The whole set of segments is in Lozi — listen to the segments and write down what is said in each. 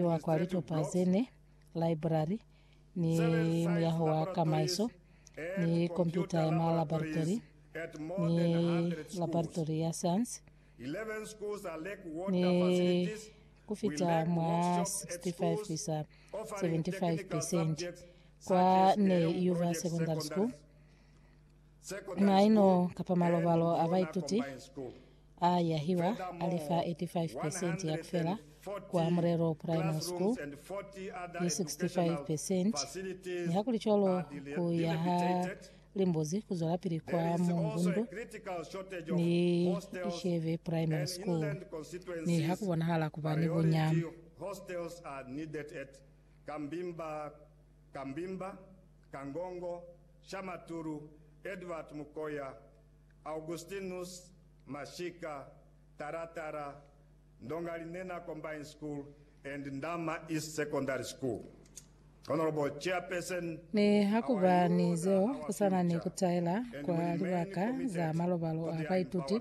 Wa kwa litopa ze ne, laibrari, ni muyaho wa kamaiso, ni kompyuta ya ma laboratori, ni laboratori ya sayansi, ni ku fita mwa 65 isa 75 percent kwa Ney Yuva Secondary School. Na ino kapa malobalo a baituti a yahiwa a li fa 85 percent ya kufela kwa Mulelo Primary School ni 65 percent. Nihakulicwalo, ku ya ha limbuzi ku zwelapili kwa Mungundu ni Isheve Primary School ni ha ku bonahala ku ba ni bunya. Kangongo, Shamatulu, Edward Mukoya, Augustinus Mashika, Taratara, Ndongalinena Combined School and Ndama East Secondary School. Honourable Chairperson, Ne hakuba ni zeo, kusana ni kutaela kwa libaka za malobalo a baituti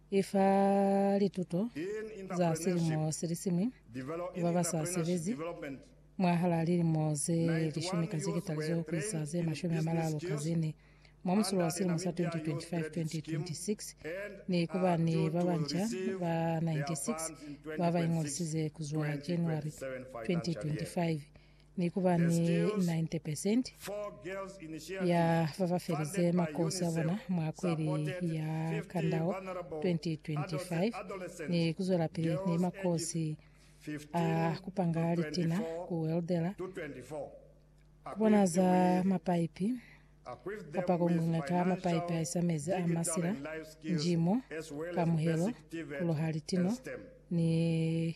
I fa lituto za silimo silisiñwi ku ba ba sa sebezi mwahalaa lilimo ze lishumi ka zihekitali zo ku isa ze mashumi a malalu ka ze ne mwa musulo wa silimo sa 2025-2026 ni ku ba ni ba banca ba 96 ba ba ingolisize ku zwa January 2025 ni ku ba ni 90 percent ya ba ba felize makosi a bona mwa kweli ya Kandao 2025 ni ku zwelapili ni makosi a ku panga litina, ku weldela, ku bonaza mapaipi, kapa ku ngwengeka mapaipi a isa mezi a masila, njimo, kamuhelo, ku loha litino, ni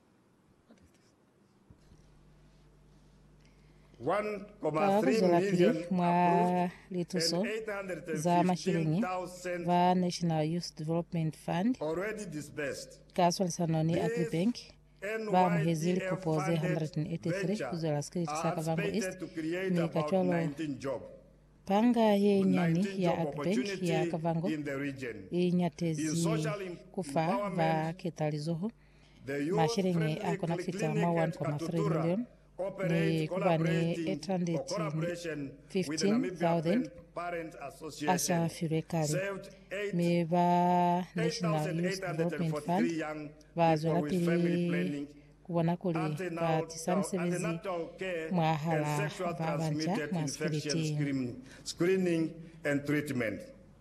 Ka kuzwelapili mwa lituso za masheleñi, ba National Youth Development Fund ka swalisano ni Agribank ba amuhezi likopo ze 183 kuzwela sikeleti sa Kavango East, mi kacwalo panga ye nyani ya Agribank ya Kavango i nyatezi kufa ba ketalizoho Masheleñi a kona kufita mwa 1.3 milioni ni ku ba ni 815,000 a sa filwe kale, mi ba National Youth Development Fund ba zwelapili ku bona kuli ba tisa misebezi mwahal'a ba banca mwa sikiliti.